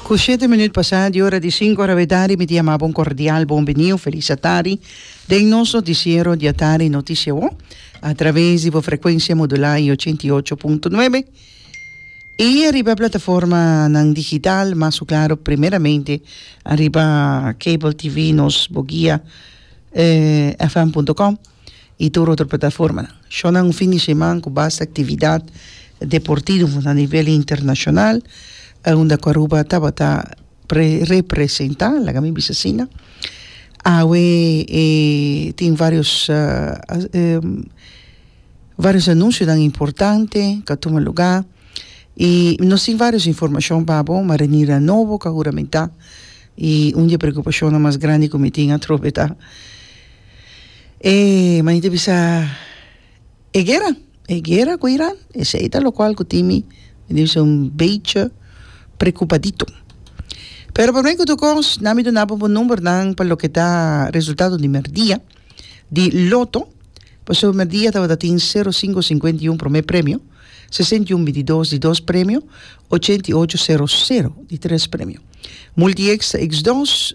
Ku shete minüt pasá di ora di sinku arawetadi mi ta yama bo un kordial bon biniu, felis atari, den nos notisiero di atari Noticia Wo, a traves di bo frekuensia modulá i ochenta i ocho punto nuebe, i ariba e plataformanan digital, mas ku klaru primeramente ariba Cable TV nos bo guia fm punto com. y tur otro plataformanan. Shon na un fin di sheman cu basta actividad deportivo na nivel internacional, unda cu Aruba tabata representa, laga mi bisa asina. Awe tin varios varios anuncionan importante cu a tuma luga y nos tin varios informacion pa bo, ma Renier a Novo cu a huramenta y un di e preocupacionnan mas grandi cu mi tin atrobe ta. E manita bisa e guera e guera cu Iran esey ta locual cu tin mi mi ta bisa un becha preocupadito pero por mi cu tur cos nan mi duna bobo numbernan pa loke ta resultado di merdia di loto pasobra merdia tabata tin sero cinco cincuenta y uno prome premio sesenta y uno binti dos di dos premio ochenta y ocho sero sero di tres premio multi ex ta ex dos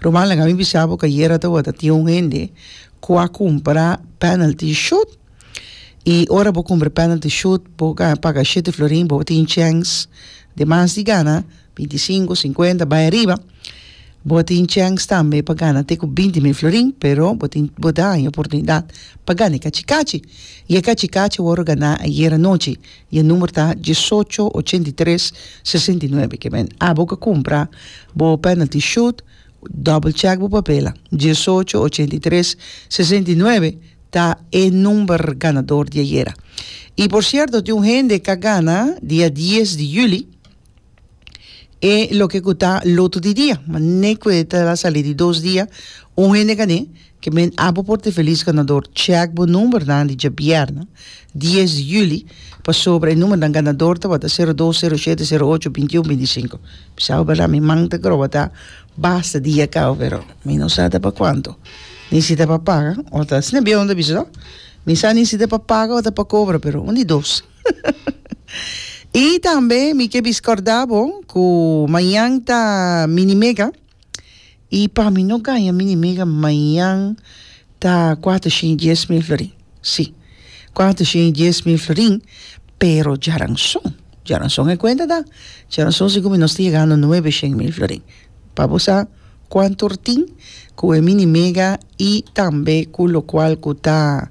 Rumanlek ami bisa boka yera tabata tin un hende cu a cumpra penalty shoot y ora bo cumpra penalty shoot bo gana paga shete florin bo tin chens di mas di gana binti cinco cincuenta bay ariba bo a tin chens tambe pa gana te cu binti mil florin pero bo tin bo daña oportunidad pa gana e cachi cachi y e cachi cachi wor gana ayer anochi Y e number ta diesocho ochenta y tres sesenta y nuebe. Ke men a bo ke kumpra bo penalty shoot, double check bo papela. Diesocho ochenta y tres sesenta y nuebe ta e number ganador di ayera. Y por cierto tin un hende ka gana dia dies di juli. e loke ku ta lotu di dia mane ku e ta sali di dos dia un hende kane ke men abo por te felis ganador chèk bo numbernan di djabièrnè dies di yuli pasobra e numbernan ganador tabata sero dos sero shete sero ocho binti un binti sinku bisao bo bèrdad mi man ta groba ta basta dia kawa pero mi no sa ta pa kuantu nesita pa paga ota esne biondon a bisa mi sa nesita pa paga ota pa kobra pero un di dos I tambe mi ke biskòrdá bo ku mañan ta mini mega i pa mi no gaña mini mega mañan ta kuater shen i dies mil florin si kuater shen i dies mil florin pero djaranson djaranson e kuenta ta djaranson si ku mi nos ta yegando nuebe shen mil florin pa bo sa kuanter tin ku e mini mega i tambe ku lokual ku ta